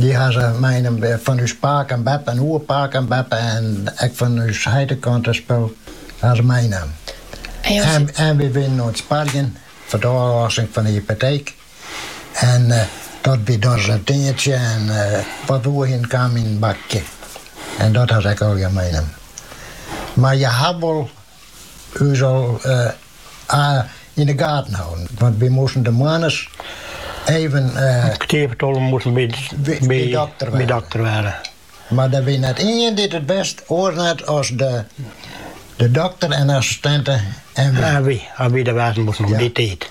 Dy ha se meinaam fan ús pake en beppe en oerpake en beppe en ek fan ús heitekante spul ha se meinaam. En wy wienen oan it sparjen foar de ôflossing fan de hypoteek. En dat wie dochs in tientsje en wat oerhinne kaam yn in bakje. En dat ha se ek allegear meinaam. Mar je hat wol Us al yn de gaten hâlden, want wy moasten de moandeis even. Kwart foar tolven moasten by de dokter wêze. Mar der wie net ien dy't it wist oars net as de dokter en assistinte en wy. En wy, as wy der wêze moasten om dy tiid.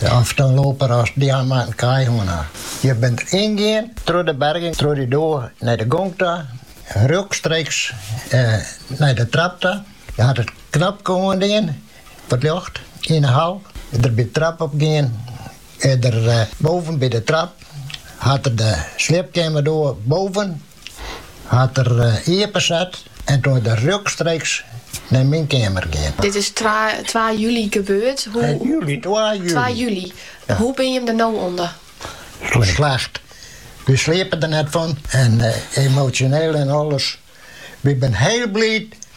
Of in loper as dy moatte in kaai hân ha. Je bint yngien troch de berging troch dy doar nei de gong ta, rjokstreeks nei de trap ta. Je hat it knopke oandien foar it ljocht yn 'e hal. Der by de trap op gien. En dêr boven by de trap hat er de sliepkeamerdoar boven. Hat er iepenset en toen is er rjokstreeks nei myn keamer gien. Dit is twa july gebeurd. Hoe binne jim der no ûnder? Slecht. Wy sliepen der net fan en emosjoneel en alles. Wy binne hiel bliid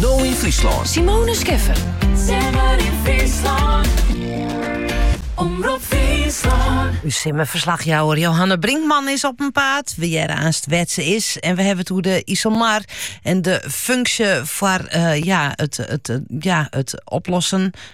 No yn Fryslân. Simone Scheffer. Simmer yn Fryslân. Omrop Fryslân. Us simmerferslachjouwer Johanna Brinkman is op 'en paad. We hearre aanst wêr't se is. En we hawwe it oer de Iselmar en de funksje foar eh, ja, it, it, eh, ja, it oplossen.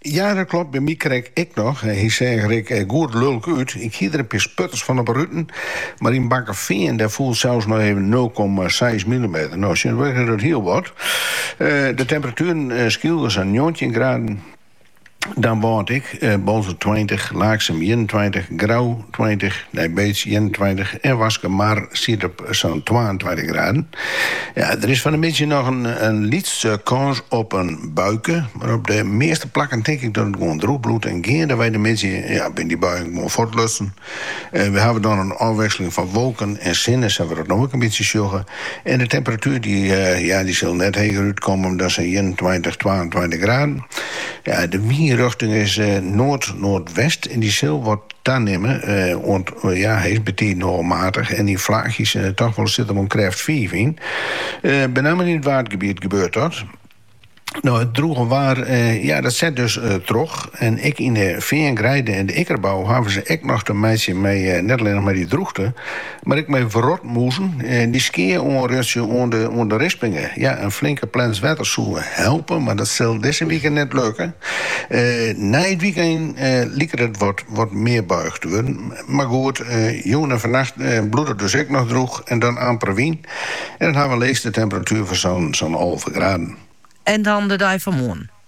Ja, dat klopt, by my krekt ek noch. Hy seach er ek eh, goed lulk út. Ik hie der in pear sputters fan op 'e ruten, mar yn Bakkefean dêr foel sels noch even nul komma seis millimeter. No, tsjintwurdich is dat hiel wat. Eh, de temperatueren eh, Skylge sa'n njoggentjin graden. Damwâld ek, eh, Boalsert tweintich, Laaksum ienentweintich, Grou tweintich, Nijbeets ienentweintich en Waskemar siet op sa'n twaentweintich graden. Ja, der is fan de middei noch in, in lytse kâns op in buike, mar op de measte plakken tink ik dat it gewoan drûch bliuwt en geandewei de middei ja, binne dy buien gewoan fuortlutsen. Eh, we hawwe dan in ôfwikseling fan wolken en sinne, sa't we dat no ek in bytsje sjogge. En de temperatuer dy, eh, ja, dy sil net heger útkomme dan sa'n ienentweintich, twaentweintich graden. Ja, de wynrjochting is eh, noard-noardwest en dy sil wat Tanimme, oant ja, hy is betiden wol matich en yn flaachjes, toch wol sit der wol krêft fiif yn. Benammen yn it Waadgebiet gebeurt dat. No, it drûge waar, ja, dat set dus troch. En ek yn de feangreide en de ikkerbou hawwe se ek noch te meitsjen mei, net allinnich mei dy drûchte, Mar ek mei wrotmûzen, dy skea oanrjochtsje oan de rispingen. Ja, in flinke plens wetter soe helpe, mar dat sil dizze wike net lukke. Nei it wykein liket it wat mear buich te wurden. Mar goed, jûn en fannacht bliuwt it dus ek noch drûch en dan amper wyn. En dan hawwe we leechste temperatuer fan sa'n alve graden. En dan de dei fan moarn?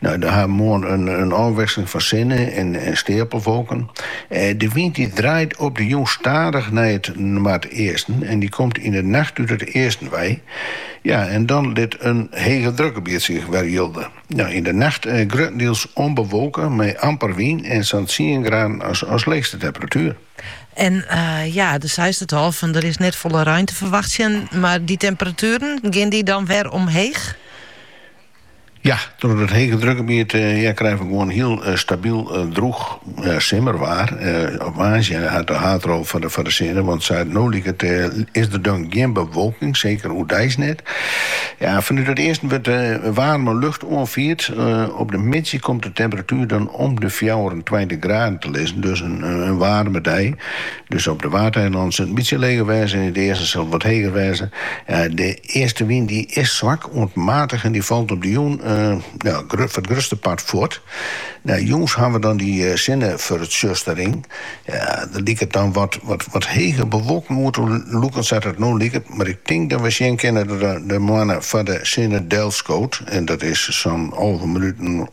Nou, dan ha we moarn in ôfwikseling fan sinne en steapelwolken. De wyn dy draait op de jûn stadich nei it noardeasten en dy komt yn de nacht út it easten wei. Ja, en dan lit in hegedrukgebiet sich wer jilde. Nou, yn de nacht gruttendiels ûnbewolke amper wyn en sa'n tsien graden as leechste temperatuer. En ja, de seist it al, fan der is net folle rein te ferwachtsjen, mar dy temperatueren, gean dy dan wer omheech? Ja, troch it hegedrukgebiet krije we gewoan hiel stabyl drûch simmerwaar. Op woansdei ha we de haadrol foar de foar de sinne, want sa no liket is der dan gjin bewolking, seker oerdeis net. Ja, fanút it easten wurdt waarme lucht oanfierd. Op de middei komt de temperatuer dan om de fjouwerentweintich graden te lizzen, dus in waarme dei. Dus op de Waadeilannen sil it in bytsje leger wêze, yn it easten sil it wat heger wêze. De eastenwyn dy is swak oant matich en dy falt op de jûn foar it grutste part fuort. Jûns hawwe we dan dy sinnefertsjustering. Der liket dan wat hege bewolking oer te lûken sa't it no liket, mar ik tink dat we sjen kinne dat de moanne foar de sinne delskoot, en dat is sa'n alve minuten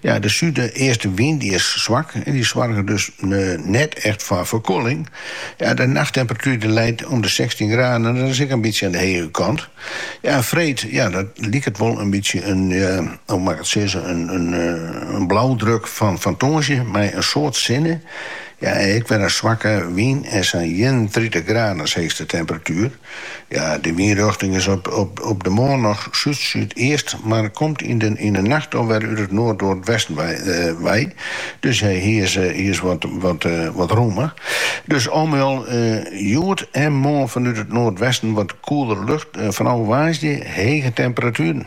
Ja, de súdeastewyn dy is swak en dy soarget dus net echt foar ferkoeling. Ja, de nachttemperatuer dy leit om de sechstjin graden en dat is ek in bytsje oan de hege kant. Ja, en freed, ja, dat liket wol in bytsje in, ja, hoe mei ik it sizze, in blaudruk fan tongersdei mei in soad sinne. Ja, en ek wer in swakke wyn en sa'n ienentritich graden as heechste temperatuer. Ja, de wynrjochting is op de moarn noch súd-súdeast, mar komt yn de nacht al wer út it noardnoardwesten wei. Dus hy is wat romme. Dus allegear hjoed en moarn fanút it noardwesten wat koelere lucht. Fanôf woansdei hege temperatueren.